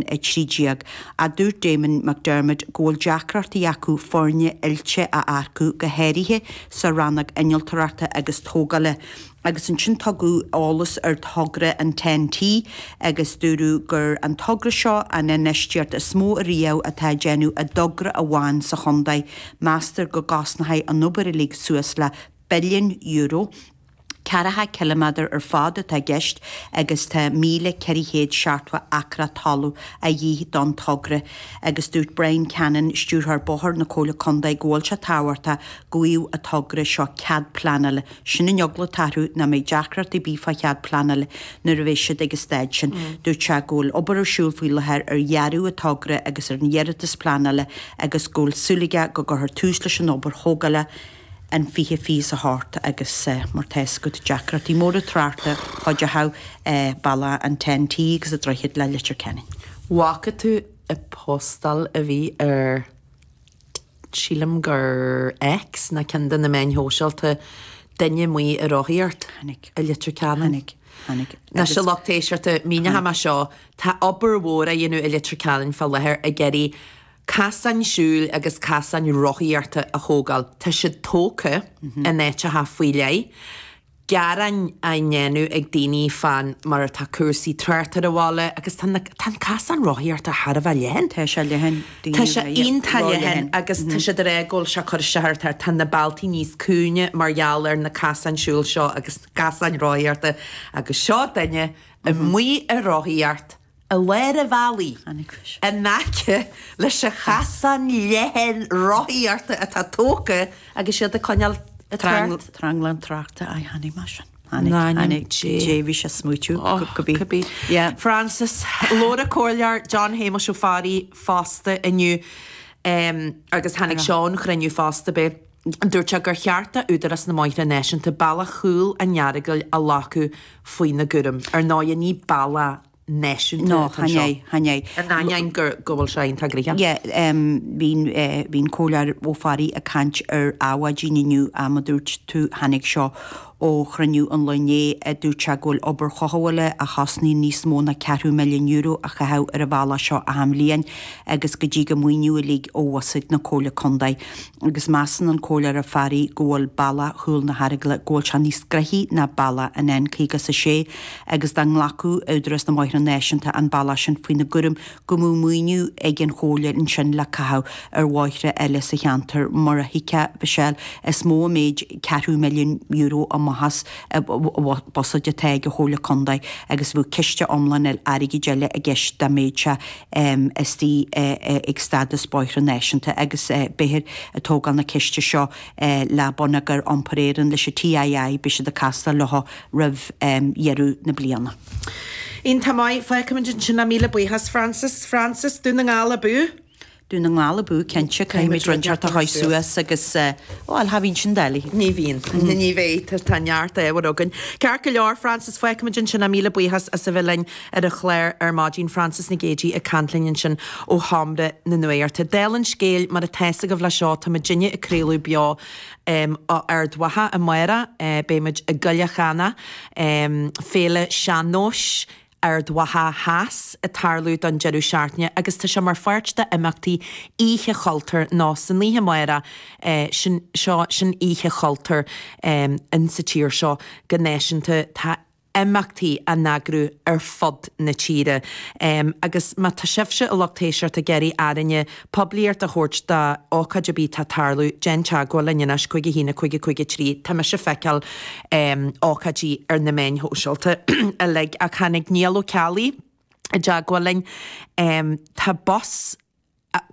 13. a dúirt Damien McDermott go bhfuil deacrachtaí acu foirne oilte a earcú, go háirithe sa rannóg innealtóireachta agus tógála, agus ansin tugadh eolas ar thogra an Ten-T agus dúradh gur an togra seo an infheistíocht is mó ariamh atá á déanamh i dtogra amháin sa chontae, meastar go gcosnóidh an obair uilig suas le billiún euro. Ceathracha cilimeadar ar fad atá i gceist agus tá 1,470 acra talamh de dhíth don togra agus dúirt Bryan Cannon, Stiúrthóir Bóthair na Comhairle Contae go bhfuil sé tábhachtach go bhfaigheadh an togra seo cead pleanála, sin an eagla atá orthu ná an mbeidh deacracht ar bith fá chead pleanála nuair a bheidh siad ag an stáid sin. Dúirt sé go bhfuil obair ar siúl faoi láthair ar dhearadh an togra agus ar an iarratas pleanála agus go bhfuil súil aige go gcuirfear tús leis an obair thógála i an 2028 agus mar tá a fhios agat deacrachtaí móra tráchta chuideodh an bealach an Ten T agus an droichead le Leitir Ceanainn. bhfaca tú an phostáil a bhí ar sílim gur X nó ceann de na meáin shóisialta duine amuigh ag rothaíocht Chonaic. i Leitir Ceanainn? Chonaic. Chonaic. Anois Agus. a lucht éisteachta, míneoidh chonaic. mé seo, tá obair mhór á dhéanamh i Leitir Ceanainn fá láthair ag iarraidh. casáin siúil agus casáin rothaíochta a thógáil. Tá siad tógtha in áiteacha faoi leith, gearáin á ndéanamh ag daoine fán mar atá cúrsaí tráchta ar an bhaile agus tá na, tá an casán rothaíochta thar a bheith leathan. Tá sé leathan, daoine Tá sé ag, iontach ró-leathan. leathan agus tá siad ag rá go bhfuil sé ag cur isteach ar, tá, tá na bealtaí níos cúinge mar gheall ar na casáin siúil seo agus na casáin rothaíochta agus seo duine amuigh ag rothaíocht i lár an bhealaí in aice leis an chasán leathan rothaíochta atá tógtha agus iad ag coinneáil trácht. Tranglam tráchta. Chonaic mé sin. Chonaic, chonaic. Yeah, bhí sé ag smaoitiú go bí. Go bí. Yeah. Frances, labhair an Comhairleoir John Shéamais Ó Fearraigh fosta inniu agus tháinig seo ón chruinniú fosta. Beidh. Dúirt sé gur cheart d'Údarás na mBóithre Náisiúnta bealach Chúl an Earagail a ghlacadh faoina gcúram. Ar ndóigh, ní bealach náisiúnta atá anseo. In ainneoin go bhfuil sé iontach gnoitheach. Bhí an Comhairleoir Ó Fearraigh ag caint ar Adhmhaidin inniu, mar a dúirt tú, tháinig seo Ó chruinniú an lae inné, dúirt sé go bhfuil obair chothabhála a chosnaíonn níos mó ná ceathrú milliún euro a chaitheamh ar an bhealach seo achan bhliain agus go dtig an maoiniú uilig ó bhuiséad na Comhairle Contae. Agus measann an Comhairleoir Ó Fearraigh go bhfuil bealach chúl na hEaragaile, go bhfuil sé níos gnoithí ná bealach an N56 agus dá nglacfadh Údarás na mBóithre Náisiúnta an bealach sin faoina gcúram, go mbeadh maoiniú ag an Chomhairle ansin le caitheamh ar bhóithre eile sa cheantar, mar a thuigfeá Michelle, is mór an méid, ceathrú milliún euro amach as buiséad atá ag an Chomhairle Contae agus bheadh ciste iomlán airgid eile i gceist dá mbeadh sé istigh ag stádas bóithre náisiúnta agus beifear ag tógáil na ceiste seo le Bonneagar Iompair Éireann, leis an TII, beidh siad ag castáil leo roimh dheireadh na bliana. Iontach maith. Fágfaimid ansin é, míle buíochas, Frances. Frances, Dún na nGall abú! Dún na nGall abú, cinnte. Caithfimid roinnt ort a chaitheamh suas agus cha bhíonn sin doiligh. Ní bhíonn. Ní bheidh. Tá neart ábhair againn. Ceart go leor, Frances. Fágfaimid ansin é, míle buíochas as a bheith linn ar an chlár ar maidin. Frances Nic Géadaigh ag caint linn ansin ó sheomra na nuachta. Dála an scéil, mar atá fhios agaibh, le seo, tá muidinne ag craoladh beo, ó Ard Mhacha amárach beidh muid i gCoilleach Eanach, féile sean-nóis Ard Mhacha Theas ag tarlú don deireadh seachtaine agus tá sé mar pháirt de imeachtaí Oíche Chultúir nó san oíche amárach seo sin Oíche Chultúir sa tír seo go náisiúnta tá imeachtaí á n-eagrú ar fud na tíre agus má tá sibhse a lucht éisteachta ag iarraidh orainne poiblíocht a thabhairt d'ócáid ar bith atá ag tarlú, déan teagmháil linn anois, cúig, a haon, a cúig, a cúig, a trí tá mise ag feiceáil ócáidí ar na meáin shóisialta uilig ach tháinig Niall Ó Ceallaigh i dteagmháil linn tá bus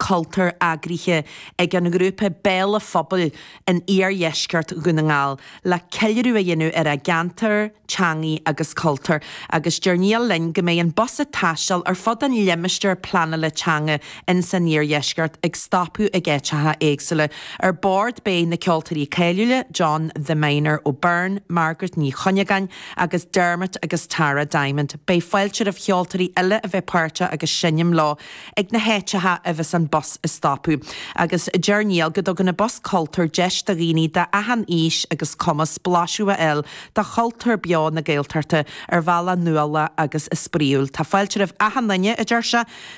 cultúir eagraithe ag an ngrúpa Béal an Phobail in iardheisceart Dhún na nGall le ceiliúradh a dhéanamh ar a gceantar, teangaidh agus cultúr agus deir Niall linn go mbeidh an bus ag taisteal ar fud an limistéir pleanála teanga ins an iardheisceart ag stopadh ag áiteacha éagsúla. Ar bord beidh na ceoltóirí cáiliúla John 'The Miner' Ó Beirn, Margaret Ní Chuinneagáin agus Dermot agus Tara Diamond. Beidh fáilte roimh cheoltóirí eile a bheith páirteach agus seinm leo. ag na háiteacha a bheas an bus ag stopadh, agus deir Niall go dtugann an bus cultúir deis do dhaoine d'achan aois agus cumas blaiseadh a fháil de chultúr beo na Gaeltachta ar bhealach nuálach agus spraíúil. Tá fáilte roimh achan duine, a deir sé.